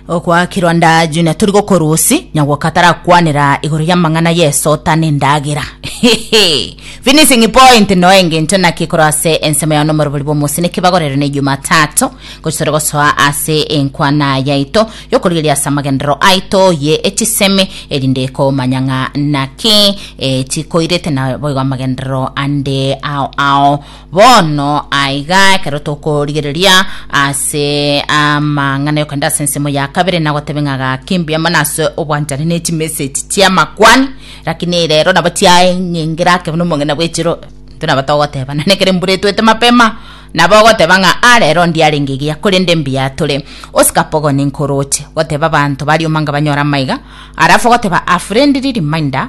okwakirwa nda junior turi gokorusi nyagwoka atarakwanera igoro y'amang'ana yesota n'endagera finishing point no engencho naki korwa ase ensemo yao nomorobori bw'omosi nekebagorero ne jumatatu gochitore gosoa ase enkwana yaito yokorigeria ase amagenderero aito ye echisemi erinde komanya ng'a naki eh, chikoirete na boigo amagenderero ande ao ao Bono aiga, ekero tokorigereria ase amang'ana y'okogenda ase ensemo ya kabere, nagotebe ng'a gaki mbuya mono ase obwanchani ne chimesegi chi'amakwani, lakini ere ero nabo chiaeng'engera ake buna omong'ina bw'echiro. Intwe nabo togoteba, nonye ekero embura etwete mapema, nabo ogoteba ng'a ah rero ndiarenge egiya, korende mbuya tore. Oscar Pogon nkoroche goteba abanto baria omanga banyore amaiga, arafu ogoteba a friendly reminder,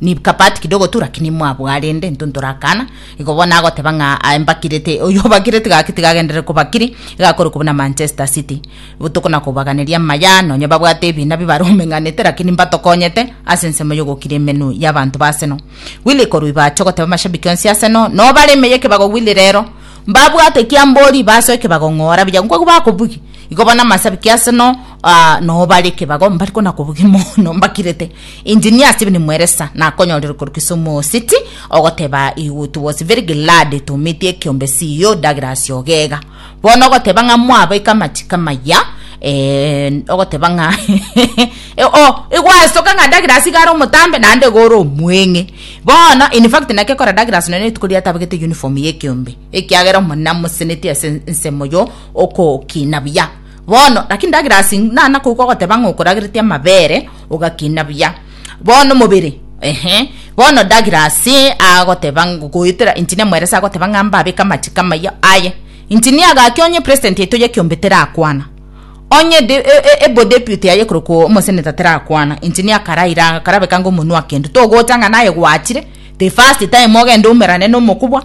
Nibka part kidogo tu lakini mwabwaa rende intwe ntorakana igo bono agoteba ng'a aye mbakirete oyio obakireti gaki tigagenderere kobakiri iga akore kobua na Manchester City botuko na kobaganeria amaya nonye babwate ebina bibare omeng'anete lakini mbatokonyete ase ensemo y'ogokira emenwa y'abanto ba Arsenal Willy korwa iba ache ogoteba amashabiki onsi Arsenal no bare ime y'ekebago Willy rero mbabwate ekiambori ibasoe ekebago ng'ora buya nkwaigwa bakobugia igo bono amasabiki Arsenal Aa noo bare ekebago mbari kona kobugia mono mbakirete Engineer Steven Mweresa nakonyorire korwa Kisumu City ogoteba he would was very glad to meet ekiombe CEO Douglas Ogega bono ogoteba ng'a mwabaika amachiko amaya eh, ogoteba ng'a Eh, oh, igwasoka ng'a Douglas iga are omotambe naende iga ore omweng'e bono in fact nake kora Douglas nonye rituko riatabagete uniform y'ekiombe ekiagera omonene amosenetie ase ensemo yo okokina buya Bono, lakini ndagera ase inana koigwa ogoteba ng'a okoragereti amabere ogakina buya bono omobere ehe bono ndagera ase agoteba goetera engineer mweresa agoteba ng'a mbabeke amachiko amaya aye engineer gaki onye president yaito ya kiombe terakwana onye de e- e- ebo deputy yaye ekorokwo omosenator terakwana engineer karaira karabekanga omonwa kende togocha ng'a naye gwachire the first time ogende oumerane na omokubwa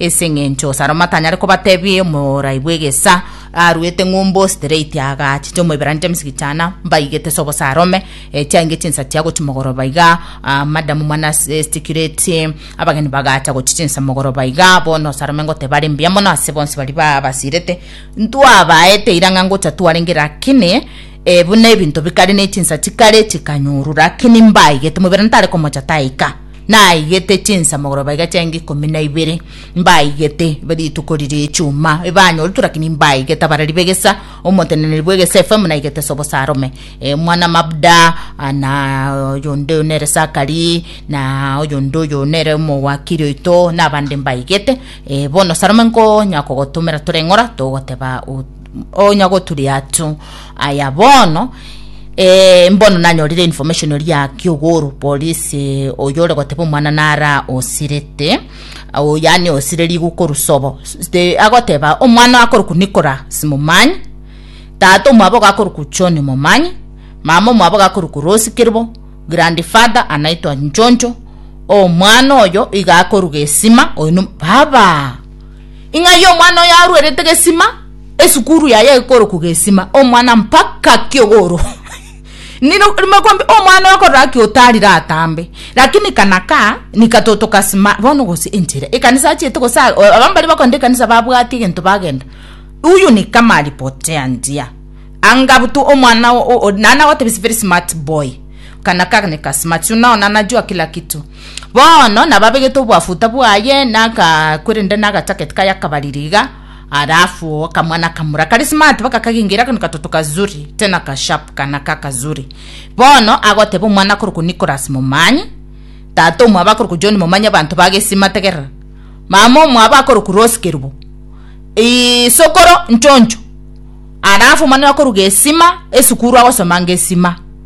Ase engencho Salomo atanyare kobatebia omorai bw'egesa aruete ng'umbu straight agachicha omoiberania James Gichana mbaigete ase obosa arome eh, chiainge chinsa chia gochi mogoroba iga ah, madam mwana ase estikireti abageni bagacha gochi chinsa mogoroba iga bono Salome ngoteba are mbuya mono ase bonsi bari babasirete ntwabaete irang'a ngocha twarenge lakini eh, buna ebinto bikare ne chinsa chikare chikanyorwa lakini mbaigete omoiberania tare komocha taika naigete chinsamogoro baiga chianga ikomi na ibere mbaigete rituko riria echuma ebanyoretwe lakini mbaigete abarari begesa omoteneneri bwegesa efm naigete sobo sarome e, mwana mabda ah, na oyonde oyo nere sakari na oyonde oyo nere omowakiri oito na abande mbaigete e, bono sarome nkonya kogotomera tore ng'ora togoteba o- onya goturia tu aya bono eh, mbono nanyorire information ori ya kiogoro polisi eh, oyo ore goteba omwana nara osirete o yani osire rigu korusobo Ste- agoteba omwana akoroku nikora simomanyi tata omwabo gakoroku choni momanyi mama omwabo gakoroku rosi kiribo grandfather anaitwa njonjo omwana oyo iga akoruga esima oino baba Ing'a ayio omwana oyo aruerete gesima, esukuru yaye ekorokwa gesima, omwana mpaka kiogoro Niro rimo kwambi omwana oyo akorora ki otarire atambe, lakini kana kaa nika toto kasima bono gose enchera. Ekanisa achiete gose a- o- abambaria bakogenda ekanisa babwati egento bagenda. Uyu ni kama alipotea njia. Anga butu omwana o- o- o- nana gotebi is very smart boy. Kana ka nika smart. Unaona anajua kila kitu. Bono nababegete obwafuta bwaye na aka korende na agachaket kaye akabariri iga, alafu akamwa na akamura kare smart baka kagengere akano katoto kazuri tena ka sharp kana ka kazuri. Bono agoteba omwana akorokwa Nicholas Momanyi, tata omwabo akorokwa John Momanyi abanto ba Gesima tegerera. Mama omwabo akorokwa Rose Kerubo. Ii sokoro nchoncho. Alafu omwana oyo akorwa Gesima, esukuru agosoma Gesima.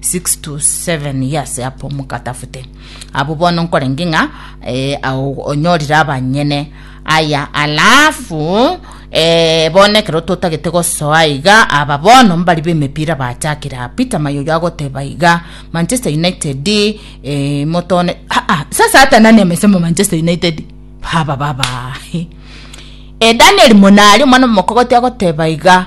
six to seven years apo mokatafute abo bono nkorenge ng'a eh, ao- onyorire abanyene aya alafu eh, bono ekero totagete gosoa iga aba bono mbari b'emepira bachakire aa peter mayoyo agoteba iga manchester united eh, motone ah, ah, sasa hata nani amesema manchester united baba baba e daniel monari omwana omokogote agoteba iga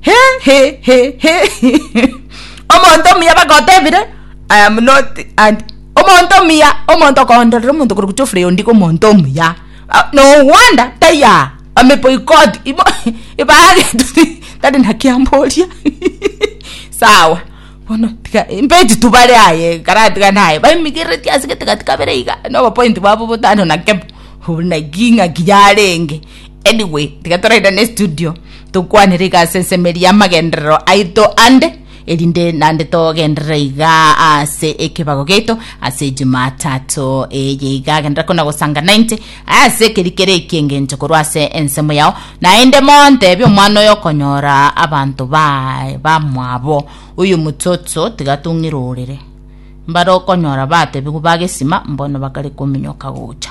he he he he omonto omuya bagotebire i am not and omonto omuya omonto okondorera omonto kore gocha ofure ondigo omonto omuya ah, no wonder taiya ameboycott ibo ibagetu tari na kiamboria sawa bono tiga mbeti tu bare aye karatiga naye baimigerereti ase getegati kabere iga nobopoint bwabo botano na kemo hu naki ng'aki yarenge Anyway, tiga torairane studio tokwanere igase ensemeri y'amagenderero aito ande, erinde nande togenderere iga ase ekebago giaito ase Jumatatu eye iga agenderere kona gosanga 90 ase ekerikere eki engencho korwa ase ensemo yao, naende montebie omwana oyo okonyora abanto baye bamwabo oyo omochocho tiga tong'iroorere. Mbare okonyora batebigu ba gesima mbono bakare kominyoka gocha.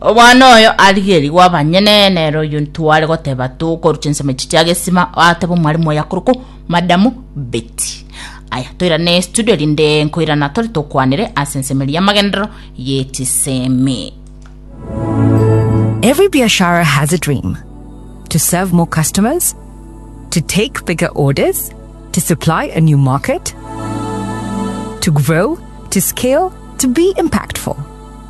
Omwana oyo arigerigwe abanyene, nere oyio ntware goteba tokoru chinsemo echi chia gesima, atebe omwalimu oye akorokwo Madamu Betty. Aya, toirane studio rinde nkoirana tore tokwanere ase ensemo eria y'amagenderero y'echisemi. Every biashara has a dream to serve more customers, to take bigger orders, to supply a new market, to grow, to scale, to be impactful.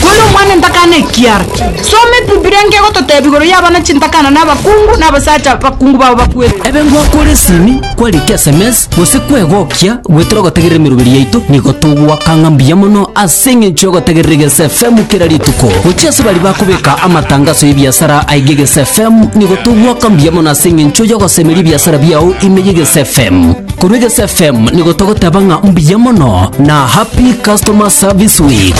Kore omwana ntakana ekiara. Soma ebibilia nkegototebia igoro y'abana chintakana na abakungu na abasacha bakungu babo bakwete. Ebe ngwakore esimi, kwarika esemesi, gose kwegokia, goetera ogotegerera emeroberi yaito, nigo togwaka ng'a mbuya mono ase eng'encho y'ogotegerera Egeso FM kera rituko. Gochia ase baria bakobeka amatangaso y'ebiasara aiga Egeso FM, nigo togwaka mbuya mono ase eng'encho y'ogosemeria ebiasara biao ime y'Egeso FM. Korwa Egesu FM nigo togoteba ng'a mbuya mono na Happy Customer Service Week.